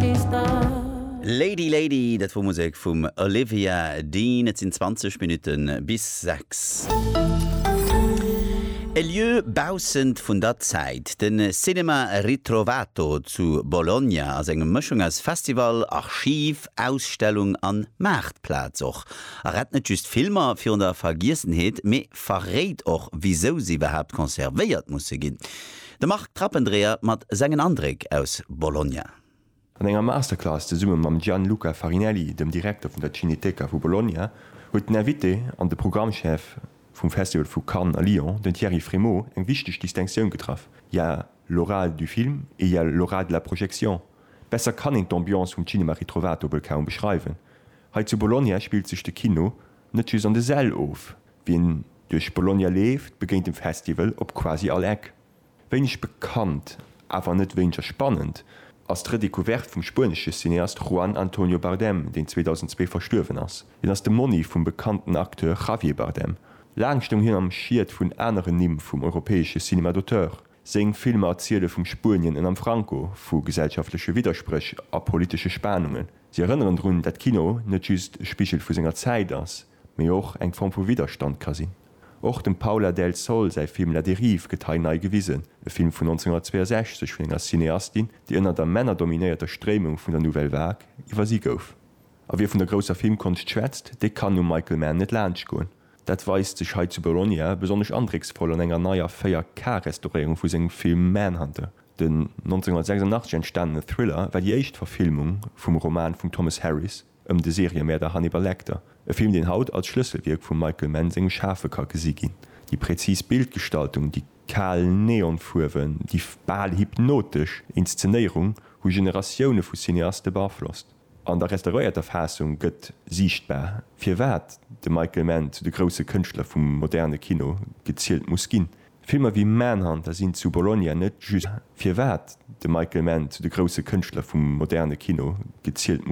Geeschter. Lady Lady, dat wor Musek vum Olivia Dean. Et sinn 20 Minutten bis 6. E Lieu baussent vun der Zäit, de Cinema Ritrovato zu Bologna ass eng Mëschung aus Festival, Archiv, Ausstellung an Maartplaz. Och a rett net just Filmer virun der Vergiessenheet, mee verréit och wisou se iwwerhaapt conservéiert musse ginn. De Marc Trappendreher mat sengen Andréck aus Bologna. An enger Masterclass zesumme mam Gianluca Farinelli, dem Direkter vun der Cineteca vu Bologna, huet den Invité an de Programmchef vum Festival vu Cannes a Lyon, den Thierry Frémaux, eng wichteg Distinctioun getraff, Il y a l'oral du film et il y a l'oral de la projection. Besser kann een d'Ambiance vum Cinema Ritrovato wuel kaum beschreiwen. Hei zu Bologna spillt sech de Kino net just an de Säll of, Wien duerch Bologna leeft, begéint dem Festival op quasi all Eck. Wéineg bekannt, awer net wéineger spannend, ass d'Redecouverte vum spuenesche Cineast Juan Antonio Bardem, deen 2002 verstuerwen ass. Hien ass de Monni vum bekannten Acteur Javier Bardem. Laang stoung hien am Schiet vun aneren Nimm vum europäesche Cinéma d'auteur. Seng Filmer erziele vum Spuenien ënnerm Franco, vu gesellschaftleche Widderspréch a politesche Spanungen. Si erënneren drun, dat Kino net just e Spigel vu senger Zäit ass, mee och eng Form vu Widderstand ka sinn. Och dem Paula del Sol säi Film La dérive gëtt hei nei gewisen, e Film vun 1962 vun enger Cineastin, déi ënner der männerdominéierter Stréimung vun der Nouvelle Vague iwwersi gouf. A wie vun der grousser Filmkonscht schwätzt, dee kann um Michael Mann net laanscht goen. Dat weist sech hei zu Bologna besonnesch andrécksvoll an enger neier 4K-Restauréierung vu sengem Film Manhunter. Den 1986 entstanene Thriller war déi éischt Verfilmung vum Roman vum Thomas Harris. ëm de Seriëmäerder Hannibal Lecter, e Film deen haut als Schlësselwierk vum Michael Mann sengem Schafe ka gesi ginn. Déi präzis Bildgestaltung, déi kal Neonfuerwen, déi bal hypnotesch Inszenéierung hu Generatioune vu Cineaste beaflosst. An der restauréierter Faassung gëtt siichtbar, firwat de Michael Mann zu de grousse Kënschtler vum moderne Kino gezielt muss ginn. Filmer wéi Manhunter sinn zu Bologna net just firwat de Michael Mann zu de grousse Kënschtler vum moderne Kino gezielt muss.